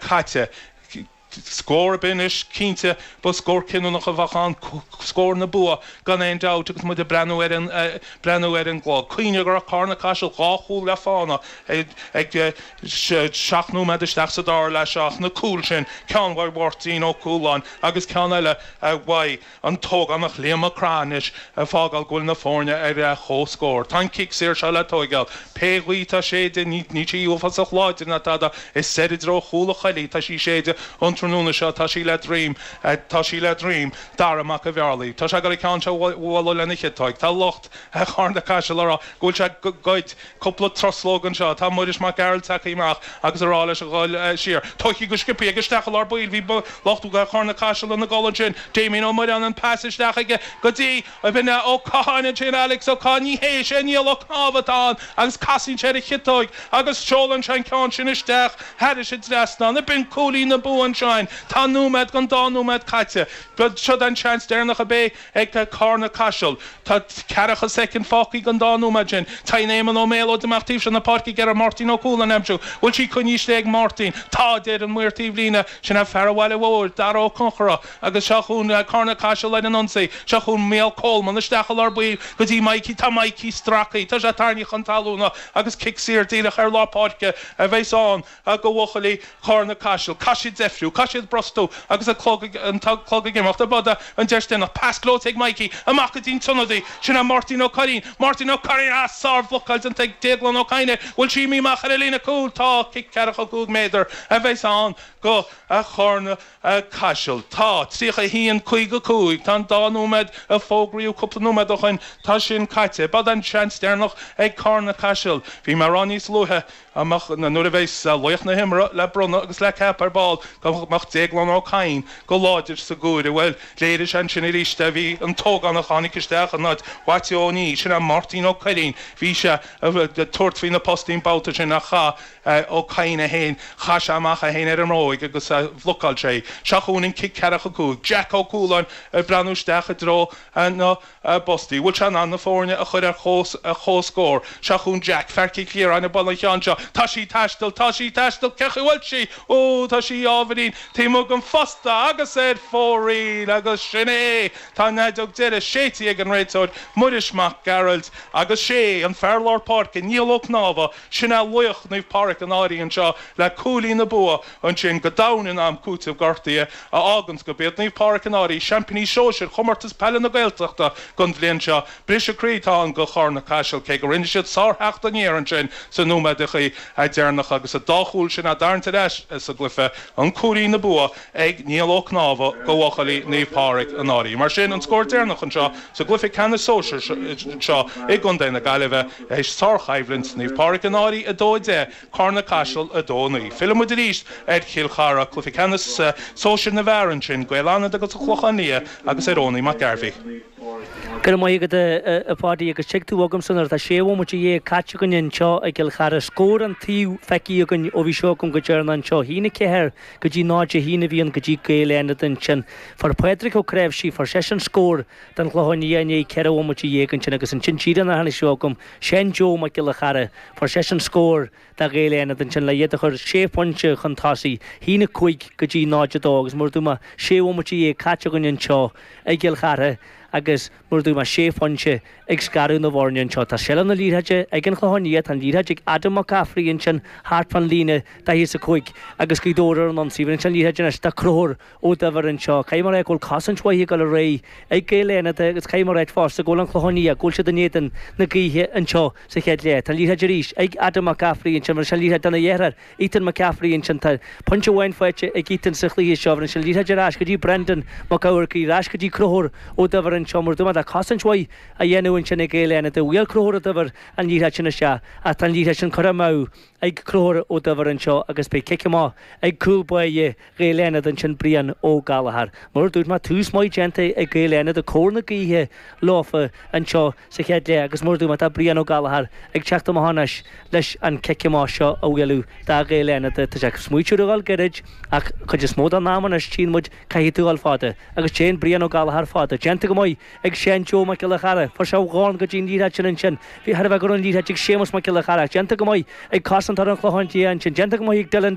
caite. Scór ar bith anois, cinnte, ba scór cinniúnach a bheadh ann, scór na bua gan aon dabht agus muid ag breathnú ar an gclog. Cuimhnigh go raibh Carna-Caiseal dhá chúl le fánaidh ag seacht nóiméad isteach sa dara leath seo ach na cúil sin, ceann uaidh Mháirtín Ó Cualáin agus ceann eile uaidh An t-ógánach Liam Mac Craith anois ag fágáil go bhfuil na foirne ar leith comhscóir. Tá an cic saor seo le tóigeáil. Pé gaoth atá ag séideadh, níl sí uafásach láidir ná tada. Is soir i dtreo chúl an Choilligh atá sí ag séideadh an tráthnóna seo. Tá sí le droim. Tá sí le droim. Dara Mac a' Bhearlaigh. Tá sé ag goil an ceann seo a bhualadh lena chiotóig. Tá lucht Charna Caiseal ag rá go bhfuil sé ag goid. Cúpla truslóg anseo. Tá Muiris Mac Gearailt tagtha amach agus ag rá leis a dhul siar. Tógtha go sciobtha aige isteach i lár baill. Bhí lucht Charna Caiseal ina gcodladh ansin. Damien Ó Muireáin an pas isteach aige go dtí Vinny Ó Catháin ansin. Alex Ó Cadhain, ní hé, is é Niall Ó Cnámha atá ann agus casann sé ar a chiotóig agus seolann sé an ceann sin isteach thairis an trasnán. Ab in cúilín na bua anseo. Tá nóiméad den dá nóiméad caite. Seo an seans deireanach a bheidh. Ag Carna Caiseal tá ceathracha soicind fágtha den dá nóiméad sin. Téann Éamonn Ó Méalóid amach taobh seo na páirce ag iarraidh Máirtín Ó Cualáin a aimsiú. Bhfuil sí coinnithe slán ag Máirtín? Tá, a deir an maor taobh líne. Sin é fear an bhaile mhóir, Dara Ó Conchúir. Agus seo chugainn Carna Caiseal ar an ionsaí. Seo chugainn Micheál Coleman. Isteach i lár baill go dtí Maidhcí. Tá Maidhcí stracthaí. Tá sé tarraingthe chun talúna agus cic saor díreach ar lár páirce a bheas ann. a do bhuachaillí Charna Caiseal, caithfidh siad deifriú, caithfidh siad brostú agus an clog ag, an clog ag imeacht, a b'fhéidir an deis deireanach, pas gleoite ag Mikey, amach go dtí'n t-ionadaí, sin é Máirtín Ó Cuirrín, Martin O'Curry, a sár-bhlocáil déanta ag Déaglán Ó Cadhain, bhfuil sí imithe amach thar an líne cúil, tá, cic ceathracha cúig méadar a bheas ann do, a Charna, a Caiseal, tá, 31, 55, tá an dá nóiméad a fógraíodh cúpla nóiméad ó shoin, tá sin caite, b'fhéidir an seans deireanach ag Carna Caiseal, bhí mé ag rá níos luaithe, amach nuair a bheas laoch na himeartha le bronnadh agus le ceapadh ar ball go mbeadh Déaglán Ó Cadhain go láidir sa gcomhaireamh. Bhuel, léirigh sé ansin arís é. Bhí an t-ógánach a tháinig isteach in áit Mhaitiú Ó Niadh, sin é Máirtín Ó Cuirrín, bhí sé ag tabhairt faoi na postaí an babhta sin ach chaith Ó Cadhain é féin, chaith sé amach é féin ar an mbróig agus bhlocáil sé í. Seo chugainn an cic ceathracha cúig. Jack Ó Cualáin ag breathnú isteach i dtreo na. a bpostaí. Bhfuil sé in ann na foirne a chur ar chomhscór? Seo chugainn Jack, fear Chill Chiaráin, ag bualadh an cheann seo. Tá sí ag taisteal, tá sí ag taisteal, cén chaoi bhfuil sí? Ó, tá sí ábhairín. Taobh amuigh den phosta agus ar fóraoil! Agus sin é! Tá an fheideog deiridh séidte ag an réiteoir, Muiris Mac Gearailt. Agus sé an fear lár páirce, Niall Ó Cnámha, sin é laoch Naomh Pádraig an Fhairche anseo, le cúilín na bua. ansin go domhain in am cúiteamh gortaithe a fhágann gurb iad Naomh Pádraig An Fhairche seaimpíní sóisir Chomórtas Peile na Gaeltachta don bhliain seo. Briseadh croí atá ann do Chárna Caiseal, cé go rinne siad sártheacht aniar ansin sna nóiméadachaí deireanacha agus an dá chúl sin á dtarraingt ar ais sa gcluiche, ach cúilín an bhua ag Niall Ó Cnámha do bhuachaillí Naomh Pádraig An Fhairche. Mar sin, an scór deireanach anseo sa gcluiche ceannais sóisir seo i gContae na Gaillimhe, sárchoimhlint, Naomh Pádraig An Fhairche 2, 10, Carna-Caiseal 2 9. Fillimid arís ar Chill Chartha, cluiche ceannais sóisir na bhfear ansin, Gaeil Fhánada agus An Clochán Liath agus ar Eoiní Mac Garvey. Go raibh maith agat, a Pháidí, agus tig tú chugamsa nuair atá sé bhomaite dhéag caite againn anseo i gCill Chartha. Scór an taobh feicthe againn ó bhí sibh agam go deireanach anseo. 1 4 go dtí 0 1 a bhí ann do Ghaeil Fhánada ansin. Fuair Pádraig Ó Creabhsaigh, fuair seisean scór don Chlochán Liath i ndiaidh ceithre bhomaite dhéag ansin agus ansin díreach sular tháinig sibh agam, Seán Joe Mac Giolla Chearra, Fuair seisean scór do Ghaeil Fhánada ansin, le iad a chur sé phointe chun tosaigh. 1 5 go dtí 0, 2 agus mar a dúirt mé sé bhomaite dhéag caite againn anseo i gCill Chartha agus mar a dúirt mé sé phointe ag scaradh na bhfoirne anseo. Tá seilbh na liathróide ag an Chlochán Liath, tá an liathróid ag Adam Mac Cafraidh ansin thart fán líne daichead is a 5 agus Gaoth Dobhair ar an ionsaí. Bheir sé an liathróid anois do Conchúr. Ó Duibhir anseo. Caithfidh mé a rá go bhfuil cosaint mhaith ag dul ar aghaidh ag Gaeil Fhánada agus caithfidh mé a rá fosta go bhfuil an Clochán Liath, go bhfuil siad in éadan na gaoithe anseo sa chéad leath. Tá liathróid arís ag Adam Mac Cafraidh ansin, bheir sé an liathróid dona dheartháir, Ethan Mac Cafraidh ansin. Tá pointe amháin faighte ag Ethan sa chluiche seo, bheir sé an liathróid ar ais go dtí Brendan Mac Eamharcaigh, ar ais go dtí Conchúr Ó Duibhir anseo. Mar a dúirt mé tá cosaint mhaith á dhéanamh ansin ag Gaeil Fhánada. Bhuail Conchúr Ó Duibhir an liathróid sin isteach ach tá an liathróid sin curtha amach ag Conchúr Ó Duibhir anseo agus beidh cic amach ag cúl báire, Ghaeil Fhánada ansin Brian Ó Gallagher. Mar a dúirt mé, tús maith déanta ag Gaeil Fhánada agus cóir na gaoithe leofa anseo sa chéad leath agus mar a dúirt mé, tá Brian Ó Gallagher ag teacht amach anois leis an cic amach seo a bhualadh do Ghaeil Fhánada. Tá sé ag smaoitiú ar a dhul gairid ach cuid is mó den am anois tchíonn muid caithfidh tú a dhul fada agus téann Brian Ó Gallagher fada. Déanta go maith ag Seán Joe Mac Giolla Chearra. Fuair sé a dhorn go dtí an liathróid sin ansin. Bhí thar a bheith gorm an liathróid ag Séamus Mac Giolla Chearra. Déanta go maith ag cosantóir an Chlocháin Liath ansin. Déanta go maith ag Dylan.